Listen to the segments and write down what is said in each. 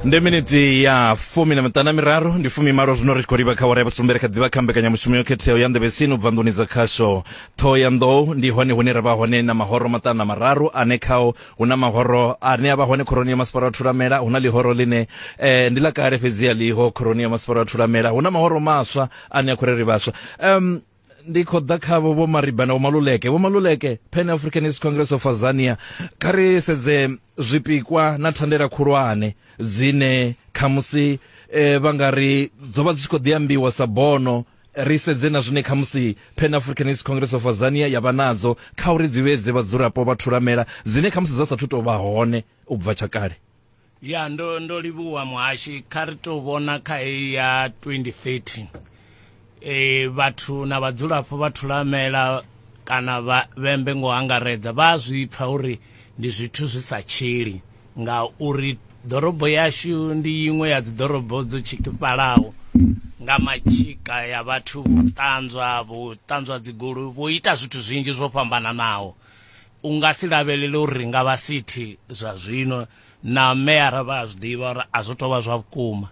ndi miniti ya fumi na miṱana miraru ndi fumi malo zwino ri tshi khou livha kha wara ya vhusumbere kha ḓivha kha mbekanyamushumo yo khetheaho ya nḓevhesini u bva nḓuni dza khasho ṱhoho ya nḓou ndi hone hune ra vha hone na mahoro maṱanu na mararu ane khao hu na mahoro ane a vha hone khoroni ya masipala wa thulamela hu na ḽihoro ḽine eh, ndi ḽa kale fhedzi a ḽiho khoroni ya masipala wa thulamela hu na mahoro maswa ane a khou ri ri vhaswa um ndi khou ḓa khavho vho mariba na vho maluleke vho maluleke pan africanist congress of azania kha ri sedze zwipikwa na thandela khulwane dzine khamusi eh, vha nga ri dzo vha dzi tshi khou ḓi ambiwa sa bono ri sedze na zwine khamusi pan africanist congress of azania ya vha nadzo kha uri dzi vhedze vhadzulapo vha thulamela dzine khamusi dza sathu tou vha hone u bva tsha kale Ya ndo ndo livhuwa muhashi kha ri tou vhona kha heyi ya 2030 eh vhathu na vhadzulapo vha thulamela kana vha vhembe ngo angaredza vha zwi pfa uri ndi zwithu zwi sa tshili nga uri ḓorobo yashu ndi iṅwe ya dzi ḓorobo dzo tshikifhalaho nga matshika ya vhathu vho ṱanzwa vho ṱanzwa dzigulu vho ita zwithu zwinzhi zwo fhambananaho u nga si lavhelele uri ri nga vha sithi zwa zwino na meyara vha a zwi ḓivha uri a zwo tou vha zwa vhukuma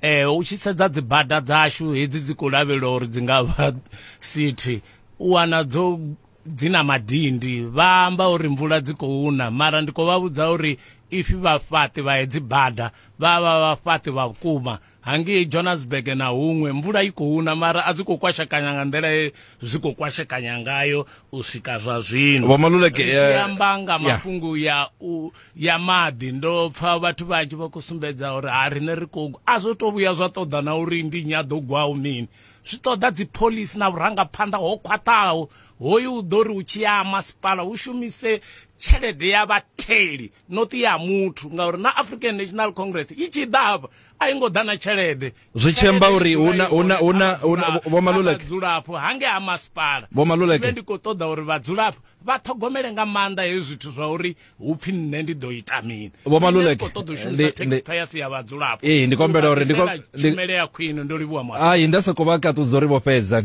um u tshi sedza dzi bada dzashu hedzi dzi khou lavhelelwa uri dzi nga vha sithi u wana dzo dzi na madindi vha amba uri mvula dzi khou na mara ndi khou vha vhudza uri ifi vhafhaṱi vha hedzi bada vha vha vhafhaṱi vha vhukuma hangei johannesburg na huṅwe mvula i khou na mara a dzi khou kwashekanya nga nḓila ye zwi khou kwashekanya ngayo u swika zwa zwino Vho Maluleke, Ri tshi eh, amba nga yeah. mafhungo ya u ya maḓi ndo pfa vhathu vhanzhi vha khou sumbedza uri ha riṋe ri khou a zwo tou vhuya zwa ṱoḓa na uri ndi nnyi a ḓo gwaho mini zwi ṱoḓa dzipholisi na vhurangaphanḓa ho khwaṱhaho hoyu u ḓo ri u tshi ya ha masipala hu shumise tshelede ya vhatheli not ya muthu ngauri na african national congress i tshi ḓa hafha a i ngo ḓa na tshelede zwi tshemba uri huna huna huna vhomaluleke vhadzulapo hange ha masipala vhomaluleke ndi khou ṱoḓa uri vhadzulapo vha ṱhogomele nga maanḓa hezwi zwithu zwa uri hu pfhi nṋe ndi ḓo ita mini vhomaluleke ndi khou ṱoḓa u shumisa taxpayers ya vhadzulapo ee ndi kombela uri ndi tshumele ya khwine ndo livhuwa mwa hai nda sokou vha kaṱudza uri vho fhedza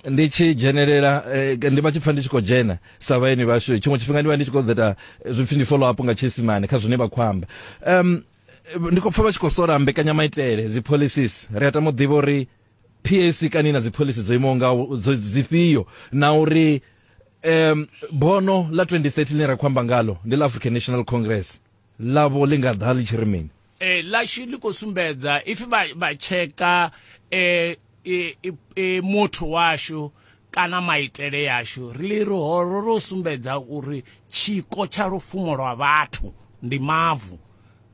ndi tshi dzhenelela eh, ndi vha tshi pfa ndi tshi khou dzhena sa vhaeni vhashu tshiṅwe tshifhinga ndi vha ndi tshi khou ṱoḓa eh, zwipfi ndi follow up nga tshiisimane kha zwine vha khou amba um ndi khou pfa vha tshi khou sola mbekanyamaitele dzi policies ri a tama u ḓivha uri pac kani na dzi policy dzo imaho nga dzifhio na uri um bono ḽa 2030 ḽine ra khou amba ngalo ndi ḽa african national congress ḽavho ḽi nga ḓa ḽi tshi ri mini eh, ḽashu ḽi khou sumbedza if vha vha tsheka eh, eh, eh, motho washu kana maitele yashu ri ri horo ro sumbedza uri tshiko tsha lufumo lwa vhathu ndi mavu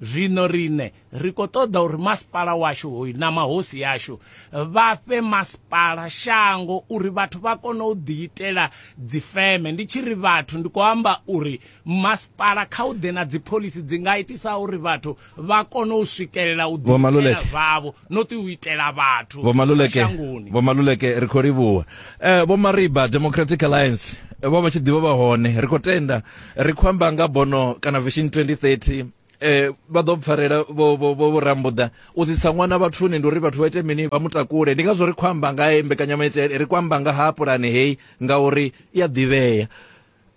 zwino rine ri khou ṱoḓa uri masipala washu hoyu na mahosi yashu vha fhe masipala shango uri vhathu vha kone u ḓiitela dzifeme ndi tshi ri vhathu ndi khou amba uri masipala kha u ḓe na dzipholisi dzi nga itisa uri vhathu vha kone u swikelela u ḓiitela zwavho no ṱi u itela vhathu shangoni vho maluleke ri khou livhuwa eh, vho mariba democratic alliance vho vha tshi ḓivha vha hone ri khou tenda ri khou amba nga bono kana vision 2030 eh vha ḓo mpfarela vho vho vho rambuḓa u tsitsa ṅwana vhathuni ndi uri vhathu vha ite mini vha mutakule ndi ngazwo ri khou amba nga he mbekanyamaitele ri khou amba nga ha pulane heyi ngauri i a ḓivhea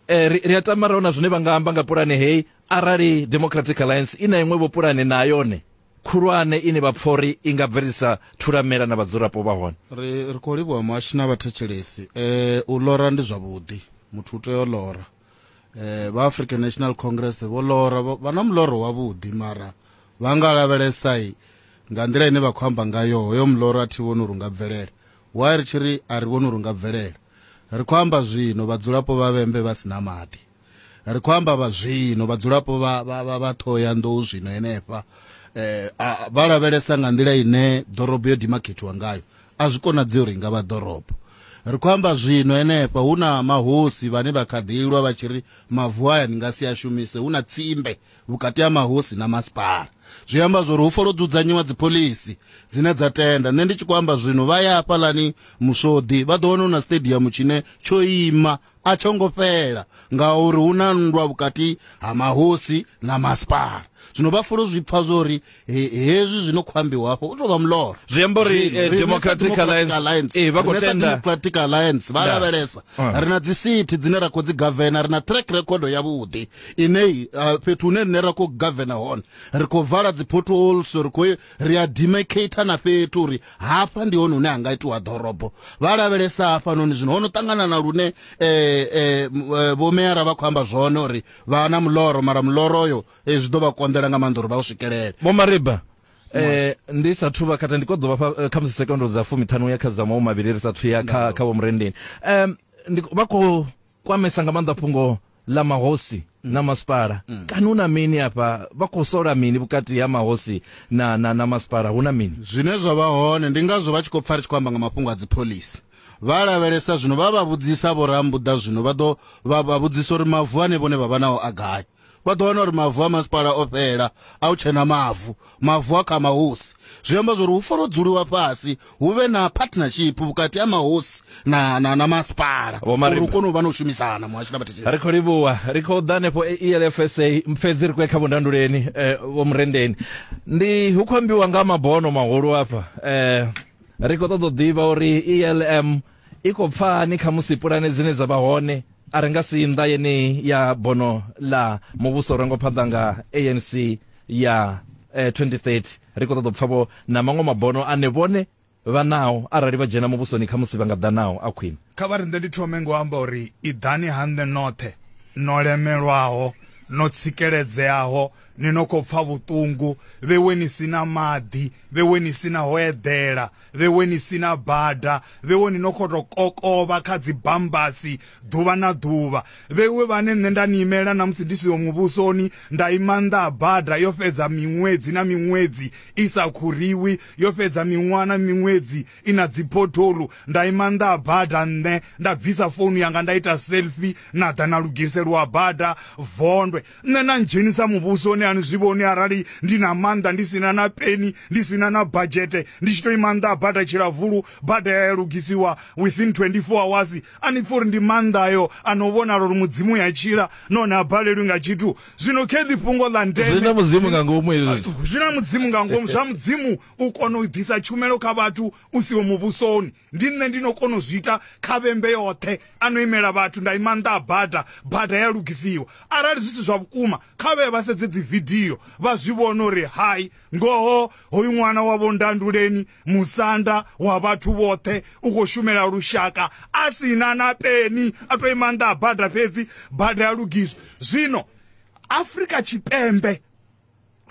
eh ri a tama raona zwine vha nga amba nga pulane heyi arali democratic alliance i na iṅwe vho pulane na yone khulwane ine vha pfori i nga bvelisa thulamela na vhadzulapo vha hone ri ri khou livhuwa muhashi na vhathetshelesi eh u lora ndi zwavhuḓi muthu u tea u lora eh vha African National Congress vho lora vha na muloro wavhuḓi mara vha nga lavhelesa nga nḓila ine vha khou amba ngayo hoyo muloro a thi vhoni uri nga bvelela why ri tshi ri a ri vhoni uri nga bvelela ri khou amba zwino vhadzulapo vha vhembe vha si na maḓi ri khou amba vha zwino vhadzulapo vha vha vha ṱhoya nḓou zwino henefha eh vha lavhelesa nga nḓila ine ḓorobo yo dimakhethiwa ngayo A zwi konadzei uri i nga vha ḓorobo. Ri khou amba zwino henefha hu na mahosi vhane vha kha ḓi lwa vha tshi ri mavu aya ni nga si a shumise, hu na tsimbe vhukati ha mahosi na masipala. Zwi amba zwa uri hu fanela u dzudzanyiwa dziphoḽisi dzine dza tenda. Nṋe ndi tshi khou amba zwino vha ya hafhaḽani Muswoḓi vha ḓo wana hu na siṱediamu tshine tsho ima a tsho ngo fhela ngauri hu na nndwa vhukati ha mahosi na masipala zwino vha fulo zwi pfa zwo ri he- hezwi zwi no khou ambiwa hafho u tou vha muloro Zwi amba uri, Zwino, eh, riṋe sa Democratic Democratic Alliance, eh, vha khou riṋe sa tenda- Democratic Alliance vha Da. lavhelesa Ah. ri na dzisithi dzine ra khou dzi gavena ri na track record yavhuḓi ine uh, fhethu hune rine ra khou gavena hone ri khou vala dzi potholes ri khou ri a demarcator na fhethu uri hafha ndi hone hune ha nga itiwa ḓorobo vha lavhelesa hafhanoni zwino ho no ṱangana na lune um eh, eh, eh, vhomeyara vha khou amba zwone uri vha na muloro mara muloro oyo zwi ḓo vha konḓela nga maanḓa uri vha u swikelele vho mariba eh ndi sa thuba khatha ndi koḓo vha kha musi sekondo dza fumi ṱhanu ya kha dza mawu mavhili ri sa thuya kha kha vho murendeni um ndi vha khou kwamesa nga maanḓa fhungo ḽa mahosi mm. na masipala mm. kana hu na mini afha vha khou sola mini vhukati ha mahosi na, na, na masipala hu na mini zwine zwa vha hone ndi ngazwo vha tshi khou pfa ri tshi khou amba nga mafhungo a dzipholisi vha lavhelesa zwino vha vha vhudzisa vho rambuḓa zwino vha ḓo vha vhudzisa uri mavu ane vhone vha vha nao a gai vha ḓo wana uri mavu a masipala o fhela a u tshena mavu mavu a kha mahosi zwi amba zwori hu fanela u dzuliwa fhasi hu vhe na partnership vhukati ha mahosi na, na, na masipala Vho Marimba. uri u kone u vha na u shumisana muhasho na vhathetshelesi ri khou livhuwa ri khou ḓa hanefho e- elfsa fhedzi ri khou ya kha vhundanduleni eh, vho murendeni ndi hu khou ambiwa nga mabono mahulu afha eh, ri khou ṱoḓa u ḓivha uri elm i khou pfani kha musi pulane dzine dza vha hone a ri nga si nnḓa yeneyi ya bono ḽa muvhuso ro ngo phanḓa nga anc ya eh, 2030 ri khou ṱoḓa u pfa vho na maṅwe mabono ane vhone vha nao arali vha dzhena muvhusoni kha musi vha nga ḓa nao a khwine kha vha riṋe ndi thome ngo amba uri iḓani ha nṋe noṱhe no lemelwaho no tsikeledzeaho ni no khou pfa vhuṱungu vhewe ni si na maḓi vhewe ni si na ho eḓela Vhewe ni si na bada, vhewe ni no khou tou kokovha kha dzibambasi ḓuvha na ḓuvha. Vhewe vhane nṋe nda ni imela na musi ndi siho muvhusoni, nda ima nnḓa ha bada yo fhedza miṅwedzi na miṅwedzi i sa khuriwi, yo fhedza miṅwaha na miṅwedzi i na dziphotholu, nda ima nnḓa ha bada nṋe nda bvisa founu yanga nda ita selfie na ḓa na lugiselwa bada vondwe. Nṋe na ndzhenisa muvhusoni ani zwi vhoni arali ndi na maanḓa ndi sina na peni ndi sina na badzhete ndi tshi to ima nnḓa ha bada tshilavulu bada ya ya lugisiwa within 24 hours ani pfhi uri ndi maanḓa ayo ano vhonala uri mudzimu ya tshila nahone a balelwi nga tshithu zwino kheḽi fhungo ḽa ndeme zwi na mudzimu nga ngomu hezwi zwithu zwi na mudzimu nga ngomu zwa mudzimu u kona u ḓisa tshumelo kha vhathu u siho muvhusoni ndi nṋe ndi no kona u zwi ita kha vhembe yoṱhe a no imela vhathu nda ima nṱha a bada bada ya lugisiwa arali zwithu zwa vhukuma kha vhe vha sedze dzi vidio vha zwi vhona uri hai ngoho hoyu ṅwana wa vho ndanduleni musanda wa vhathu vhoṱhe u khou shumela lushaka a si na na peni a to ima nṱha a bada fhedzi bada ya lugiswa zwino afrika tshipembe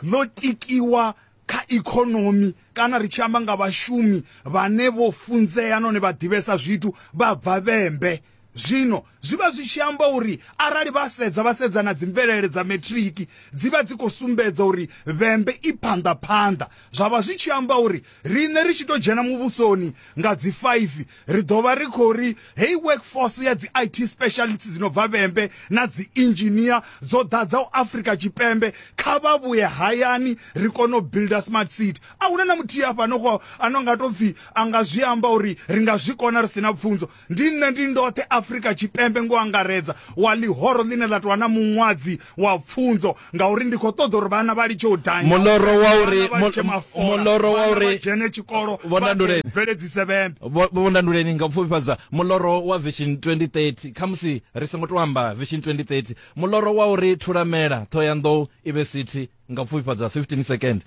ḽo tikiwa kha ikonomi kana ri tshi amba nga vhashumi vhane vho funzea nahone vha ḓivhesa zwithu vha bva vhembe zwino zwi vha zwi tshi amba uri arali vha sedza vha sedza na dzi mvelele dza matric dzi vha dzi khou sumbedza uri vhembe i phanḓa phanḓa zwa vha zwi tshi amba uri Riṋe ri tshi tou dzhena muvhusoni nga dzi faifi, ri ḓo vha ri khou ri heyi workforce ya dzi IT specialists dzi no bva vhembe na dzi engineer dzo ḓadzaho Afrika Tshipembe kha vha vhuye hayani ri kone u builder smart city. A hu na na muthihi afha no kho ano nga tou pfi a nga zwi amba uri ri nga zwi kona ri si na pfunzo. ndi nṋe ndi ndoṱhe afrika tshipembe ngo angaredza wa ḽihoro ḽine ḽa tovha na muṅwadzi wa pfunzo ngauri ndi khou ṱoḓa uri vhana vha litshe u danyamuloro wa uri muloro wa uri dzhene tshikolo bveledzise vhembe vhondanduleni nga pfufhifhadza muloro wa vision 2030 khamusi ri songo to amba vision 2030 muloro wa uri thulamela thoyandou ive sithi nga pfufha dza 15 second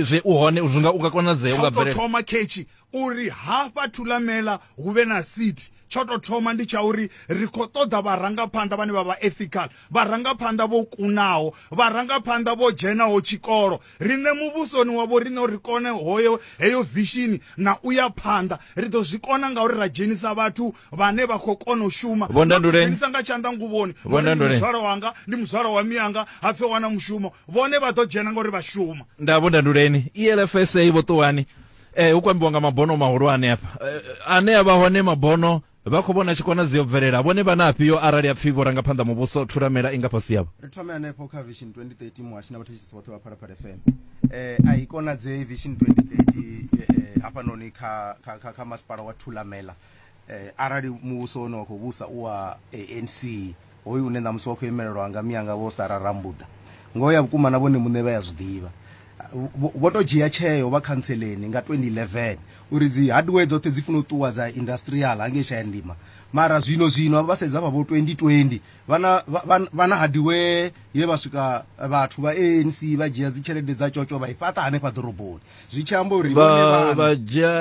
zwe u hone zwi nga u nga konadzea unga bvelela thoma khetshi uri hafha thulamela hu vhe na city tsho to thoma ndi tsha uri ri kho ṱoḓa vharangaphanḓa vhane vha vha ethical vharangaphanḓa vho kunaho vharangaphanḓa vho dzhenaho tshikolo riṋe muvhusoni wavho riṋe uri kone hoyo heyo vishini na u ya phanḓa ri ḓo zwi kona ngauri ra dzhenisa vhathu vhane vha khou kona u shuma dzhenisa nga tshanḓa nguvhoni ngori muzwala wanga ndi muzwala wa miyanga ha pfe wana mushumo vhone vha ḓo dzhena ngori vha shuma nda vhondanduleni elfsa vho ṱuwani eh hu kwambiwa nga mabono mahulwane hafha eh, ane a vha hone mabono vha khou vhona tshikona dzi yo bvelela vhone vha na afhio arali a pfhi vho ranga phanḓa muvhuso thuramela i nga fhasi yavho ri thome hanefho kha vision 2030 muhashi na vhathetsisi vhoṱhe vha phalaphala fm eh a i konadzei vision 2030 eh, eh, hafhanoni kha, kha, kha, kha masipala wa thulamela Arali muvhuso une wa khou vhusa u wa ANC, hoyu une ṋamusi wa khou imelelwa nga mianga Vho Sarah Rambuḓa, ngoho ya vhukuma na vhone muṋe vha ya zwi ḓivha. Vho tou dzhia tsheo vha khantseleni nga 2011 uri dzi hardware dzoṱhe dzi funa u ṱuwa dza industrial hangei Shayandima mara zwino zwino vha sedza vha vho 2020 vha na vha na hardware ye vha swika vhathu vha ANC vha dzhia dzi tshelede dza tshotsho vha i fhaṱa hanefha ḓoroboni zwi tshi amba uri vhone vha vhana vha dzhia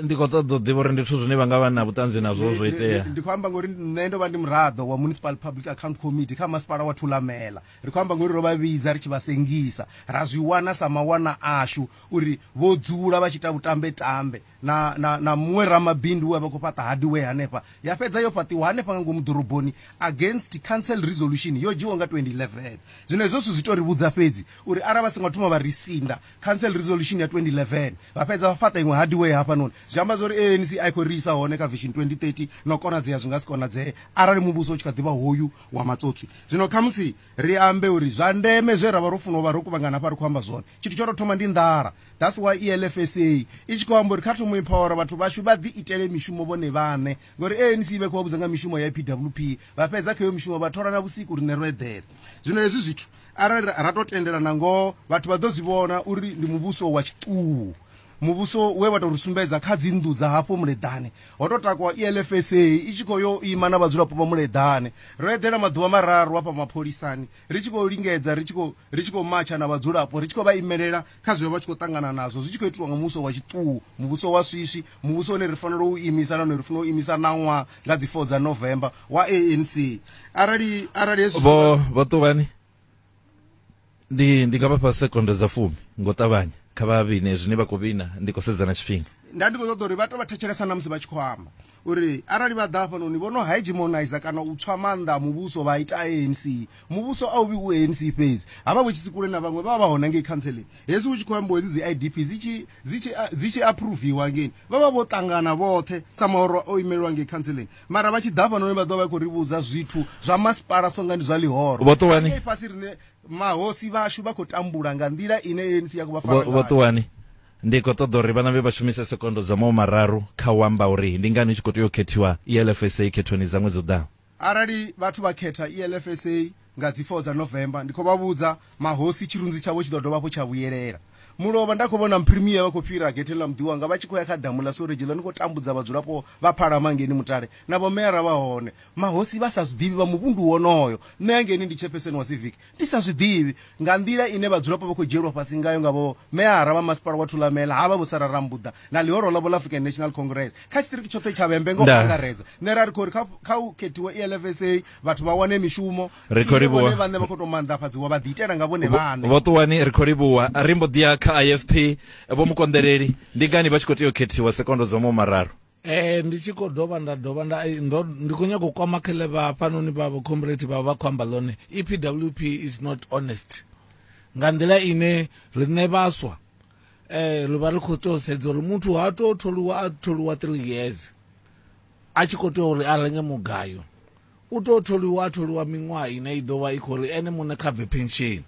ndi khou ṱoḓa u ḓivha uri ndi zwithu zwine vha nga vha na vhuṱanzi nazwo zwo itea ndi khou amba ngori nṋe ndo vha ndi muraḓo wa municipal public account committee kha masipala wa thulamela ri khou amba ngori ro vha vhidza ri tshi vha sengisa ra zwi wana sa mawana ashu uri vho dzula vha tshi ita vhutambe tambe na na na muṅwe ramabindu we vha khou fhaṱa hadiwe hanefha ya fhedza yo fhaṱiwa hanefha nga ngomu ḓoroboni against council resolution yo dzhiwa nga 2011 zwino hezwo zwithu zwi to ri vhudza fhedzi uri arali vha songo thoma vha ri sinda Council Resolution ya 2011 vha fhedza vha fhaṱa iṅwe hardware hafhanoni zwi amba zwa uri ANC a i khou ri isa hone kha Vision 2030 na u konadzea zwi nga si konadzee arali muvhuso u tshi kha ḓivha hoyu wa matsotswi zwino khamusi ri ambe uri zwa ndeme zwe ra vha ro funa u vha ro kuvhangana hafha ri khou amba zwone tshithu tsho tou thoma ndi nḓala that's why ELFSA i tshi khou amba uri kha thomo empower vhathu vhashu vha ḓi itele mishumo vhone vhaṋe ngori ANC vha khou vha vhudza nga mishumo ya PWP vha fhedza kha iyo mishumo vha thola na vhusiku rine ro eḓela zwino hezwi zwithu Arali ra tou tendela na ngoho, vhathu vha ḓo zwi vhona uri ndi muvhuso wa tshiṱuhu, muvhuso we wa tou ri sumbedza kha dzinnḓu dza hafho Muleḓane. Ho tou takuwa ELFSA i tshi khou yo ima na vhadzulapo vha Muleḓane. Ro eḓela maḓuvha mararu hafha mapholisani ri tshi khou lingedza, ri tshi khou ri tshi khou matsha na vhadzulapo, ri tshi khou vha imelela kha zwe vha vha tshi khou ṱangana nazwo zwi tshi khou itiwa nga muvhuso wa tshiṱuhu, muvhuso wa swiswi, Muvhusoni ri fanela u imisa nahone ri fanela u imisa ṋaṅwaha nga dzi 4 dza November wa ANC arali arali hezwi vho vho ṱuvhani ndi ndi nga vhafha sekondo dza fumi ngo ṱavhanya kha vha vhine zwine vha khou vhina ndi khou sedza na tshifhinga nda ndi khou ṱoḓa uri vha to vha thetshelesa na musi vha tshi khou amba uri arali vha ḓa hafhanoni vho no hegemonizer kana u tswa maanḓa a muvhuso vha ita anc Muvhuso a u vhi u ANC fhedzi, ha vha vho Tshisikule na vhaṅwe vha vha vha hone ngei khantseleng. Hezwi hu tshi khou ambiwa hedzi dzi IDP dzi tshi, dzi tshi, dzi tshi aphuruviwa hangei, vha vha vho ṱangana vhoṱhe sa mahoro o imelwa ngei khantseleng. Mara vha tshi ḓa hafhanoni vha ḓo vha vha khou ri vhudza zwithu zwa masipala songa ndi zwa ḽihoro. Vha ngei fhasi riṋe mahosi vhashu vha khou tambula nga nḓila ine ANC ya khou vha fara ngayo. Vhoṱuwani, Ndi khou ṱoḓa uri vhana vhe vha shumise sekondo dza mawo mararu kha u amba uri ndi ngani hu tshi khou tea u khethiwa ELFSA khethoni dza ṅwedzi u ḓaho. Arali vhathu vha khetha ELFSA nga dzi 4 dza November, ndi khou vha vhudza mahosi tshirunzi tshavho tshi ḓo dovha hafhu tsha vhuyelela. Mulovha, nda khou vhona Mprimie vha khou fhira getheni ḽa muḓi wanga vha tshi khou ya kha damu ḽa Sewregi ḽa ni khou tambudza vhadzulapo vha Phalama ngeni Mutale na vhomeara vha hone. Mahosi vha sa zwi ḓivhi vha muvhundu wonoyo. Nṋe hangei ndi tshepeseni wa Civic, I sa zwi ḓivhi nga nḓila ine vhadzulapo vha khou dzhielwa fhasi ngayo nga vho meyara vha masipala wa Thulamela, havha vho Sarah Rambuḓa na ḽihoro ḽavho ḽa African National Congress kha tshiṱiriki tshoṱhe tsha Vhembe nga u Ndaa. angaredza. Nṋe ra ri khou ri kha kha hu khethiwe ELFSA vhathu vha wane mishumo Ri khou ine livhuwa. vhone vhaṋe vha khou tou maanḓafhadziwa vha ḓiitela nga vhone vhaṋe. Vho Ṱuwani ri khou livhuwa. Ri mbo ḓi ya kha IFP. Vho Mukonḓeleli, ndi ngani vha tshi khou tea u khethiwa sekondo dza mumararu? ee ndi tshi khou dovha nda dovha nda eh, ndo ndi khou nyaka u kwama khele vha hafhanoni vha vha comrade vha vha khou amba ḽone epwp is not honest nga nḓila ine riṋe vhaswa um ri vha ri khou tou sedza uri muthu ha tou tholiwa a tholiwa three years a tshi khou tea uri a renge mugayo U tou tholiwa a tholiwa miṅwaha ine i ḓo vha i khou ri ene muṋe kha bve phensheni.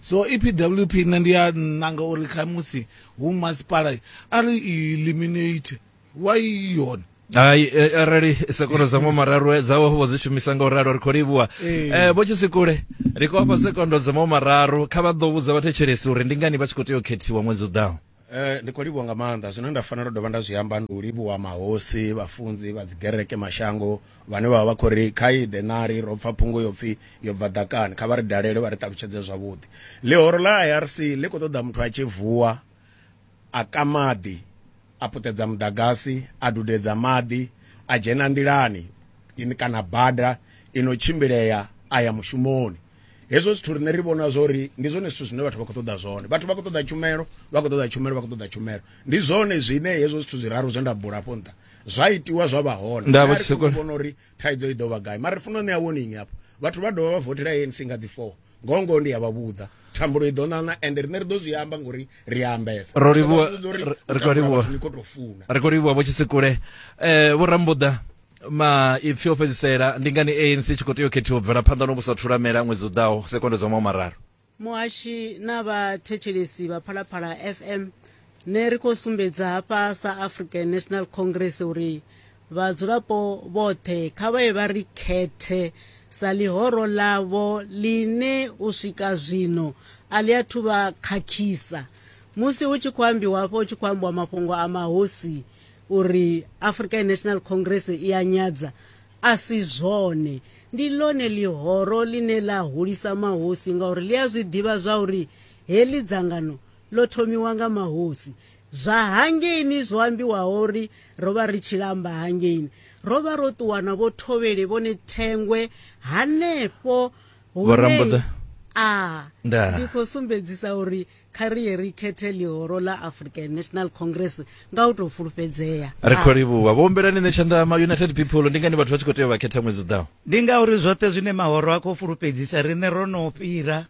So EPWP nṋe ndi a nanga uri khamusi hu masipala a ri i eliminate why i yone. Hai eh, arali sekoro dza ṅwa mararu eh, dzawe vho dzi shumisa nga u ralo ri khou livhuwa Ee. eh vho tshisikule ri khou vha fha sekondo dza ṅwa mararu kha vha ḓo vhudza vhathetshelesi uri ndi ngani vha tshi khou tea u khethiwa ṅwedzi u ḓaho Eh, ndi khou livhuwa nga maanḓa zwine nda fanela u dovha nda zwi amba ndi u livhuwa mahosi vhafunzi vha dzigereke mashango vhane vha vha vha khou ri kha iḓe nari ro pfa phungo yo pfhi yo bva ḓakani kha vha ri dalele vha ri ṱalutshedze zwavhuḓi ḽihoro ḽa irc ḽi khou ṱoḓa muthu a tshi vuwa a ka maḓi a puṱedza muḓagasi a dudedza maḓi a dzhena nḓilani ini kana bada ino tshimbilea a ya mushumoni hezwo zwithu rine ri vhona zwori ndi zwone zwithu zwine vhathu vha khou ṱoḓa zwone vhathu vha khou ṱoḓa tshumelo vha khou ṱoḓa tshumelo vha khou ṱoḓa tshumelo ndi zwone zwine hezwo zwithu zwiraru zwe nda bula afho nṱha zwa itiwa zwa vha hone nda vha tshi vhona uri thaidzo i ḓo vha gai mara ri funa u ṋea warning hafho vhathu vha dovha vha votela ANC nga dzi 4 ngoho ngoho ndi ya vha vhudza thambulo i ḓo ṋaṋa ende rine ri ḓo zwi amba ngori ri a ambesa ro livhuwa ri khou livhuwa ri khou livhuwa vho tshisekule um eh, vho rambuḓa maipfi o fhedzisela ndi ngani anc tshi khou tea u khethiwa u bvela phanḓa no vhusa thulamela ṅwedzi u ḓaho sekondo dza mawu mararu muhashi na vhathetshelesi vha phalaphala fm ne ri khou sumbedza hafha sa african national congress uri vhadzulapo vhoṱhe kha vha ye vha ri khethe sa ḽihoro ḽavho ḽine u swika zwino a ḽi athu vha khakhisa musi hu tshi khou ambiwa hafho hu tshi khou ambiwa mafhungo a mahosi uri African National Congress i ya nyadza a si zwone ndi ḽone ḽihoro ḽine ḽa hulisa mahosi ngauri ḽi a zwi ḓivha zwa uri heḽi dzangano ḽo thomiwa nga mahosi zwa hangeini zwo ambiwaho uri ro vha ri tshi lamba hangeini ro vha ro ṱuwa na vho thovhele vhone thengwe hanefho vho rambuḓa a ndi khou sumbedzisa uri kha ri ye ri khethe ḽihoro ḽa african national congress nga u tou fulufhedzea ri khou livhuwa vhoombelani nṋe tshanḓa ma united people ndi ngani vhathu vha tshi khou tea u vha khetha ṅwedzi ḓaho ndi ngauri zwoṱhe zwine mahoro a khou fulufhedzisa riṋe ro no fhira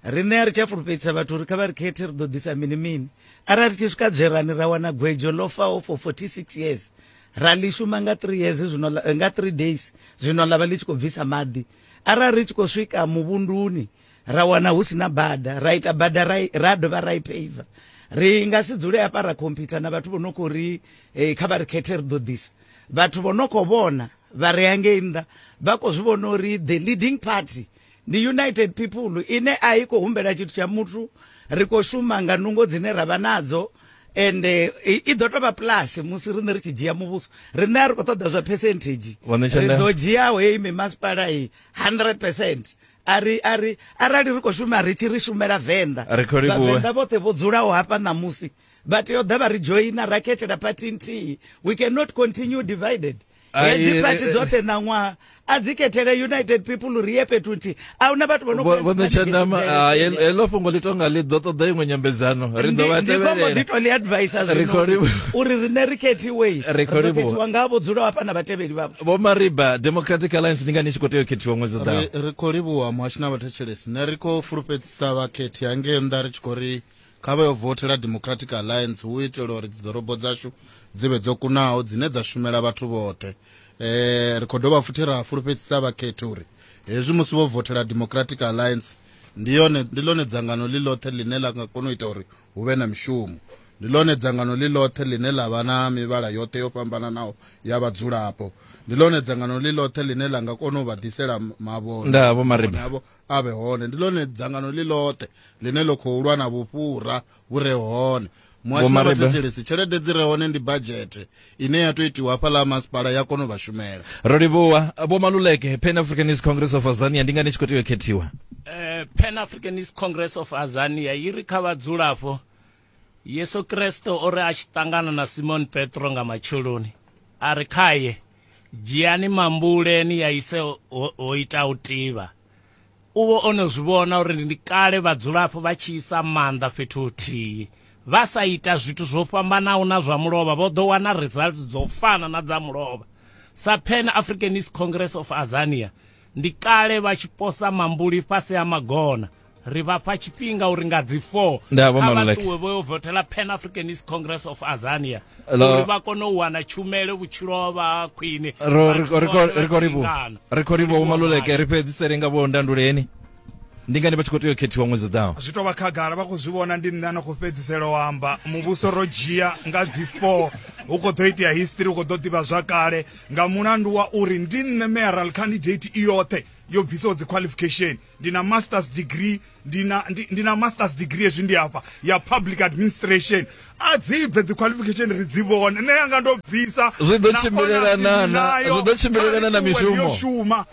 riṋe a ri tsha fulufhedzisa vhathu uri kha vha ri khethe ri ḓo ḓisa mini mini arali tshi swika dzwerani ra wana gwedzo ḽo faho for 46 years ra ḽi shuma nga 3 years zwino nga 3 days zwino ḽa vha ḽi tshi khou bvisa maḓi arali ri tshi khou swika muvhunduni ra wana hu sina bada ra ita bada ra dovha ra i paver ri nga si dzule hafha ra computer na vhathu vho no khou ri eh, kha vha ri khethe ri ḓo ḓisa vhathu vho no khou vhona vha re hangei nnḓa vha khou zwi vhona uri the leading party ndi united people ine a i khou humbela tshithu tsha muthu ri khou shuma nga nungo dzine ra vha nadzo ende eh, i ḓo tou vha plus musi riṋe ri tshi dzhia muvhuso riṋe a ri khou ṱoḓa zwa percentage ri ḓo dzhiaho heyi mimasipala i 100 percent ari ari arali ri khou shuma ri tshi ri shumela venḓa vhavenḓa vhoṱhe vho dzulaho hafha ṋamusi vha tea u ḓa vha ri joina ra khethela phathi nthihi we cannot continue divided hedzi phathi dzoṱhe ṋaṅwaha a dzi khethele united people ri ye fhethu nthihi a huna vhathu vhonotshandama heḽo fhungo ḽi tonga ḽi ḓo ṱoḓa iṅwe nyambedzano ri ḓo vha tevhelela ndi to ḽi advisa zwino uri riṋe ri khethiwe ri khethiwa nga vho dzulaho hafha na vhatevheli vhavho vho mariba democratic alliance ndi ngani i tshi khou tea u khethiwa ṅwedzi ḓaho ri ri khou livhuwa muhashi na vhathetshelesi ne ri khou fulufhedzisa vhakhethi hangei nnḓa ri tshi khou ri kha vha yo vothela democratic alliance hu itela uri dziḓorobo dzashu dzi vhe dzo kunaho dzine dza shumela vhathu vhoṱhe um ri khou dovha futhi ra fulufhedzisa vhakhethi uri hezwi musi vho vothela democratic alliance ndi yone ndi ḽone dzangano ḽi ḽoṱhe ḽine ḽa nga kona u ita uri hu vhe na mishumo. Ndi ḽone dzangano ḽi ḽoṱhe ḽine ḽa vha na mivhala yoṱhe yo fhambananaho ya vhadzulapo. Ndi ḽone dzangano ḽi ḽoṱhe ḽine ḽa nga kona u vha ḓisela mavhone Nda, Vho Mariba. havho a vhe hone. Ndi ḽone dzangano ḽi ḽoṱhe ḽine ḽo khou lwa na vhufhura vhu re hone. Muhasho wa Mariba. Vhathetshelesi, tshelede dzi re hone ndi badzhethe ine ya to itiwa hafhaḽa masipala ya kona u vha shumela ro livhuwa vho maluleke pan africanist congress of azania ndi ngani tshi khou tea u khethiwa eh, pan africanist congress of azania i ri kha vhadzulapo yesu kreste o ri a tshi ṱangana na simon petro nga matsheloni a ri khaye dzhiani mambuleni ya ise ho ita u tivha U vha o no zwi vhona uri ndi kale vhadzulapo vha tshi isa maanḓa fhethu huthihi. Vha sa ita zwithu zwo fhambanaho na zwa mulovha vho ḓo wana results dzo fana na dza mulovha. Sa Pan Africanist Congress of Azania, ndi kale vha tshi posa mambuli fhasi ha magona. Ri vha fha tshifhinga uri nga dzi 4 Ndaa, Vho kha vha Maluleke. ṱuwe vho yo vothela Pan Africanist Congress of Azania. uri vha kone u wana tshumelo vhutshilo ha vha ha khwine ri khou ri vho maluleke ri fhedzisele nga vho ndanduleni ndi ngani vha tshi khou tea u khethiwa ṅwedzi ḓaho zwi tou vha khagala vha khou zwi vhona ndi nṋe na khou fhedzisela u amba muvhuso ro dzhia nga dzi four hu khou ḓo itea history hu khou ḓo ḓivha zwa kale nga mulandu wa uri ndi nṋe mayoral candidate i yoṱhe yo bvisaho dzi qualification ndi na masters degree ndi na ndi, ndi na masters degree ezwi ndi hafha ya public administration a dzi bve dzi qualification ri dzi vhone nṋe yanga ndo bvisa Zwi ḓo na tshimbilelana honors ndi na- nayo. zwi ḓo tshimbilelana Kha na ri ṱuwe ri yo mishumo. shuma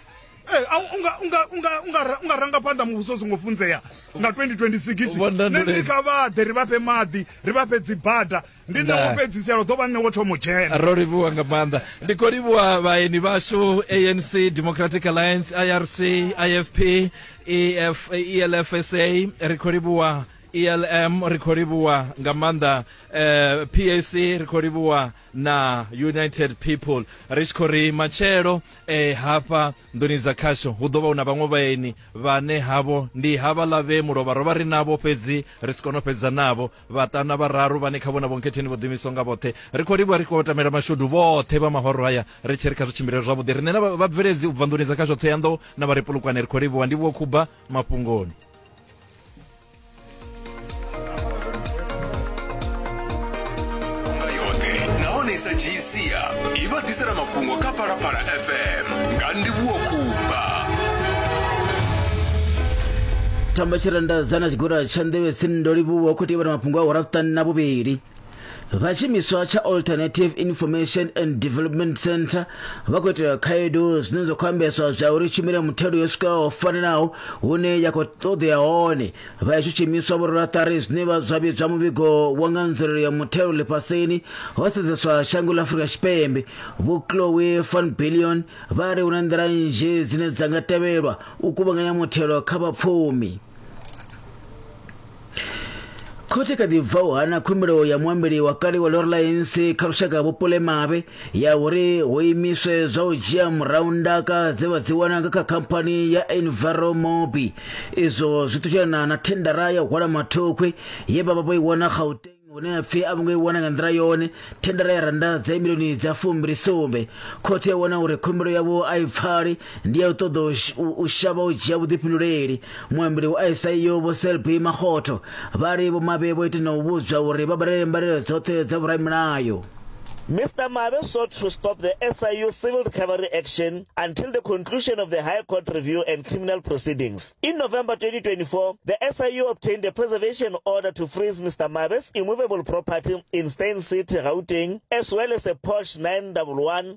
Eh, a u- unga unga unga unga ra- unga ranga phanḓa muvhuso songo funzea nga 2026 Vho Nanduleni. nṋe ndi kha vhaḓe ri vha fhe maḓi ri vha fhe dzibada ndi nṋe wo fhedzisela ḓo vha nṋe wo thoma u dzhena ro livhuwa nga maanḓa ndi khou livhuwa vhaeni vhashu anc democratic alliance irc ifp EF, elfsa ri khou livhuwa elm ri khou livhuwa nga maanḓa eh, pac ri khou livhuwa na united people ri tshi khou ri matshelo eh, hafha nḓuni dza khasho hu ḓo vha hu na vhaṅwe vhaeni vhane havho ndi havhaḽa vhe mulovha ro vha ri navho fhedzi ri si kone u fhedza navho vhaṱana vhararu vhane kha vhona vhonketheni vho ḓimiswa nga vhoṱhe ri khou livhuwa ri khou tamela mashudu vhoṱhe vha mahoro haya ri tshi ri kha zwi tshimbile zwavhuḓi riṋe na vhabveledzi u bva nḓuni dza kha zwoṱhe ya nḓo na vha ri pulukwane ri khou livhuwa ndi vhuo khuba mafhungoni Unga yote naonesa jinsia ivatisela makungo ka palapala fm nga ndivhuwo kumba tamba tshirandazana tshigora tsha nḓevhe sindo livhuwa u khou tevhela mafhungo a hora vhuṱanu na vhuvhili vha tshimiswa tsha alternative information and development center vha khou itela khaedu zwine zwa khou ambeswa zwa uri tshumelo ya muthelo yo swikaho fanelaho hune ya khou ṱoḓea hone vha ya zwishumiswa vhurulaṱari zwine vha zwa vhidzwa muvhigo wa nga nzulelo ya muthelo ḽifhasini ho sedzeswa shango ḽa afurika tshipembe vho chloe van billion vha ri hu na nḓila nzhi dzine dza nga tevhelwa u kuvhanganya muthelo kha vhapfumi khothe kha ḓi bva u hana khumbelo ya muambeli wa kale wa lorlines kha lushaka vhupule mavhe ya uri hu imiswe zwa u dzhia murahu ndaka dze vha dzi wana nga kha khamphani ya enviromobi izwo zwi ṱutshana na thendara ya u hwala mathokhwe ye vha vha vho i wana gauteng hune ha pfi a vho ngo i wana nga nḓila yone thendara ya randa dza milioni dza fumbilisumbe khothe ya wana uri khumbelo yavho a i pfali ndi ya u ṱoḓa u sh- u- u shavha u dzhia vhuḓifhinduleli muambeli wa SIU vho Selby Makgotho vha ri vho Mabe vho ita na u vhudzwa uri vha badele mbalelo dzoṱhe dza vhoramilayo Mr. Mabe sought to stop the SIU civil recovery action until the conclusion of the High Court review and criminal proceedings. In November 2024, the SIU obtained a preservation order to freeze Mr. Mabe's immovable property in Stein City, Gauteng, as well as a Porsche 911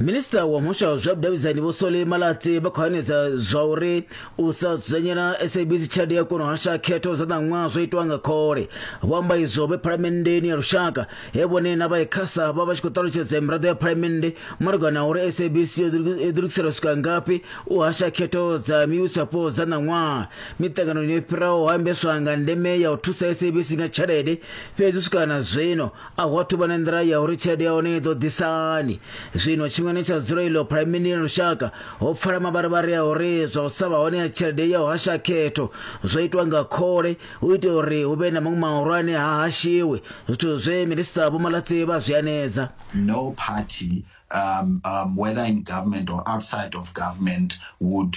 minista wa muhasho wa zwa vhudavhidzani vho sole malatsi vha khou hanedza zwa uri u sa dzudzanyela sabc tshelede ya kona u hasha khetho dza ṋaṅwaha zwo itwa nga khole vho amba izwo vhe phalamenndeni ya lushaka he vhone na vha ikhasa vha vha tshi khou ṱalutshedza miraḓo ya phalamennde malugana na uri sabc yo ḓilugisela swika ngafhi u hasha khetho dza mivhusapo dza ṋaṅwaha miṱanganoni yo fhiraho ho ambeswa nga ndeme ya u thusa sabc nga tshelede fhedzi u swika na zwino a hu athu vha na nḓila ya uri tshelede ya hone i ḓo ḓisani zwino tshiṅwe ne tsha dzula iḽo phuraimini ya lushaka ho pfala mavharivhari a uri zwa u sa vha hone ya tshelede ya u hasha khetho zwo itwa nga khole u itela uri hu vhe na maṅwe mahulwane ha hashiwe zwithu zwe minista vho malatsi vha zwi anedza no party um, um, whether in government or outside of government would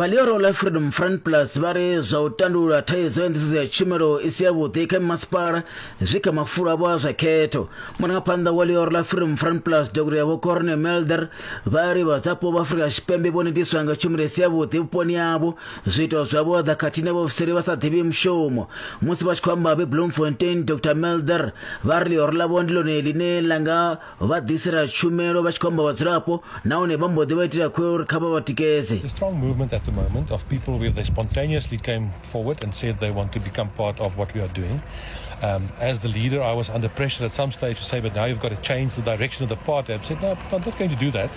vha Leroy Life Freedom Front Plus vha ri zwa u tandulula thaidzo ya nḓisedzo ya tshumelo i si yavhuḓi kha masipala zwi kha mafulo avho a zwa khetho murangaphanḓa wa Leroy Life Freedom Front Plus Dr Yavho Corne Melder vha ri vhadzapo vha Afrika Tshipembe vho netiswa nga tshumelo i si yavhuḓi vhuponi havho zwiito zwa vhuaḓa khathihi na vhaofisiri vha sa ḓivhi mushumo musi vha tshi khou amba vhe bloemfontein dr melder vha ri ḽihoro ḽavho ndi ḽone ḽine ḽa nga vha ḓisela tshumelo vha tshi khou amba vhadzulapo nahone vha mbo ḓi vha itela khuwelo uri kha vha vha tikedze The strong movement at the moment of people where they spontaneously came forward and said they want to become part of what we are doing. Um, as the leader, I was under pressure at some stage to say, but now you've got to change the direction of the party. I said, no, I'm not going to do that.